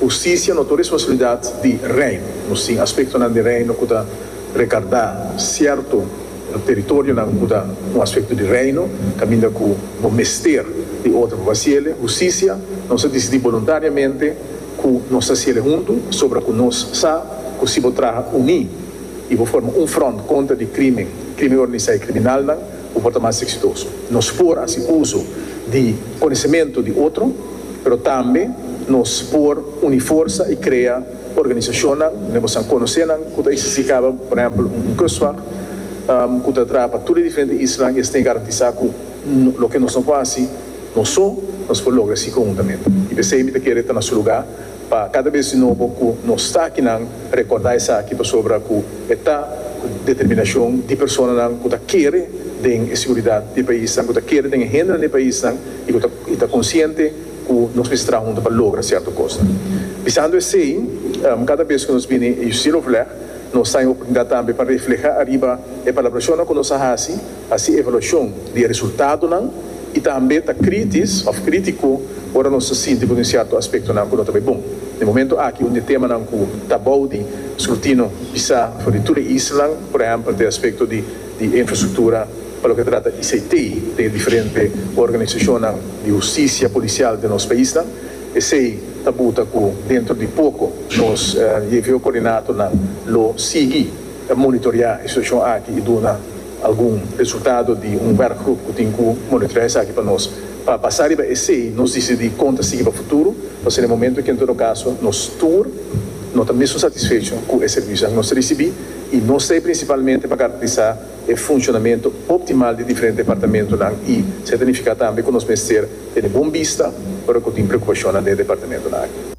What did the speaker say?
Husticia no ta un responsabilidad di Rey. Nos tin aspectonan di Reino cu ta recardá cierto teritorionan cu ta un aspecto di Reino, caminda cu bo mester di otro pa faciele. Husticia nos a dicidí boluntariamente cu nos ta haciele huntu, pasobra cu nos sa cu si bo traha uní y bo forma un front contra di crimen, crimen organizá y criminalnan, Cu por ta mas exitoso. Nos por haci uzo di conocemento di otro, pero tambe nos por uni forsa y crea organizacionnan den bo san conocenan cu ta existi caba, por ehempel, un Kustwacht cu ta traha pa tur e diferente islanan y esnan garantisa cu loke nos no por haci nos so, nos por logra si conhuntamente. Y p'esey mi ta kere ta na su lugar. pa kada bes di nobo ku nos takinan rekordá esaki pasobra ku e ta ku determinashon di personanan ku ta kere den e siguridat di e paisnan, ku ta kere den e hendenan di e paisnan i ku ta i ta konsiente ku nos mester traha huntu pa logra sierto kosnan. Bisando esei, kada bes ku nos bini e Justicia Overleg, nos ta den e oportunidat tambe pa reflehá ariba e palabrashonnan ku nos a hasi, haci evaluacion di e resultadonan y tambe ta critis of critico ora nos ta sinti cu tin cierto aspectonan cu no ta bay bon. Na e momento aki un di e temanan cu ta abao di scrutino bisa for di tur e islanan por ehempel ta e aspecto di di e infrastructura pa loke ta trata ICT den e diferente organisacionnan di husticia policial den nos paisnan. Esey ta buta cu dentro di poco nos JVO coordinatornan lo sigui. Ta monitorea e situashon aki i duna algun resultado di un wèrkgrup ku tin ku monitorea esaki pa nos. Pa basa riba esei nos disidí kon ta sigui pa futuro, pa ser e momentu ki en todo kaso nos tur no ta mesun satisfecho ku e servisionan ku nos ta risibí i nos ta ei prinsipalmente pa garantisá e funshonamentu optimal di diferente departamentunan i se ta nifiká tambe ku nos mester tene bon bista ora ku tin preokupashonnan den e departamentunan aki.